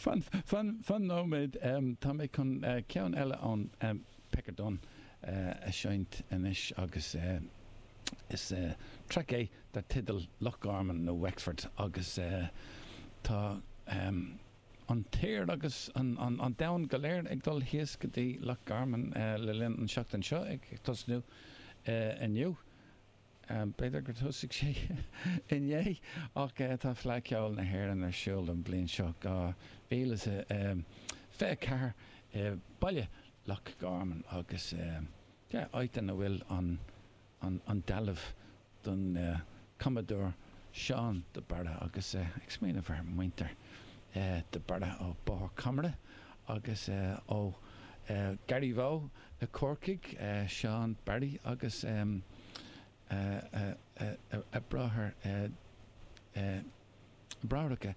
Fan, fan, fan nóiméad, tá mé chun ceann eile ón Pecker Dunne a seinnt anois agus is track é dar teideal Loch Garman nó Wexford agus tá an t-aer agus an domhan go léir ag dul thíos go dtí Loch Garman le linn an tseachtain seo ag tosnú inniu. B'fhéidir gur thosaigh sé inné, ach tá Fleadh Cheoil na hÉireann ar siúl an bhliain seo, 2024, i mBaile Loch Garman agus áit ina bhfuil an dealbh don cumadóir Seán de Barra agus ag smaoineamh ar mhuintir de Barra ó Bóthar Camara agus ó Gharraí Rua i gCorcaigh, Seán Barry agus a bhráithreacha,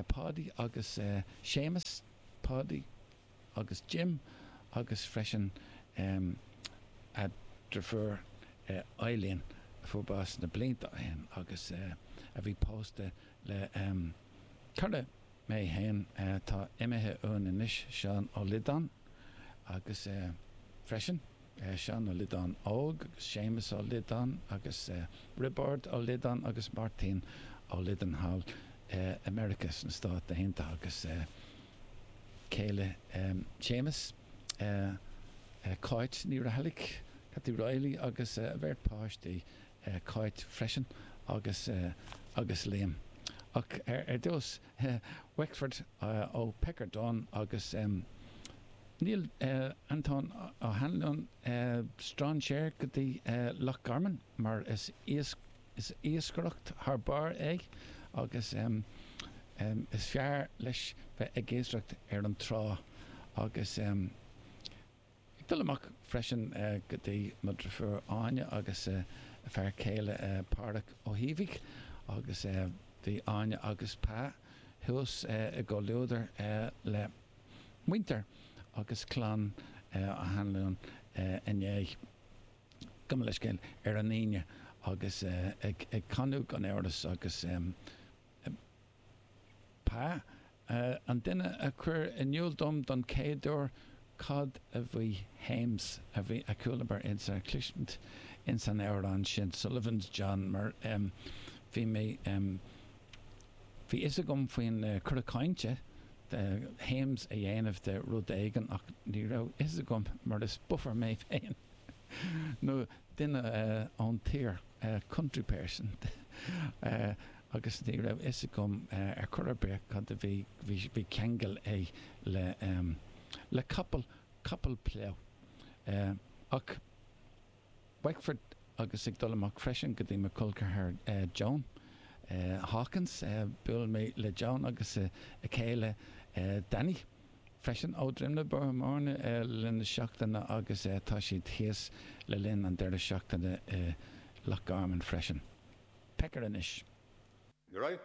Páidí agus Séamus, Páidí agus Jim, agus freisin a dhriofúr Eileen a fuair bás na blianta ó shin agus a bhí pósta le cara Mé féin atá imithe uainn anois, Seán Ó Liodáin, agus freisin Seán Ó Liodáin Óg agus Séamus Ó Liodáin agus Roibeard Ó Liodáin agus Máirtín Ó Liodáin thall i Meiriceá sna Stáit Aontaithe agus céile Séamus, Cáit Ní Raghallaigh, Kathy Reilly, agus a bheirt páistí, Cáit freisin agus agus Liam. Ach ar dtús Wexford ó Pecker Dunne agus níl Antóin Ó hAnluain strainséir go dtí Loch Garman mar is iascaireacht thar barr é agus is fearr leis bheith ag iascaireacht ar an trá agus Ag dul amach freisin go dtí mo driofúr Áine agus a fear céile Pádraig Ó hÍbhigh agus bhí Áine agus Pa thuas i gcomhluadar le muintir agus clann Ó hAnluain inné, gabh mo leithscéal, ar an Aoine agus ag canadh gan amhras agus Pa, An duine a chuir in iúl dom don chéaduair cad a bhí hames a bhí a chualamar ins a chloisint ins an amhrán sin Sullivan's John mar bhí mé bhí a fhios agam faoin cora cainte hames a dhéanamh de rud éigin ach ní raibh a fhios agam mar is buffer mé féin nó duine ón tír. country person, agus ní raibh fhios agam ar chor ar bith cad a bhí, bhí ceangal aige le, le capall, capall plough. Ach Wexford, agus ag dul amach freisin go dtí mo cholceathar Joan Hawkins, buail mé le Joan agus a chéile Danny, freisin ó Dhroim na Bothánna le linn na seachtaine agus tá siad thíos le linn an deireadh seachtaine i Loch Garman freisin. Pecker anois. Right.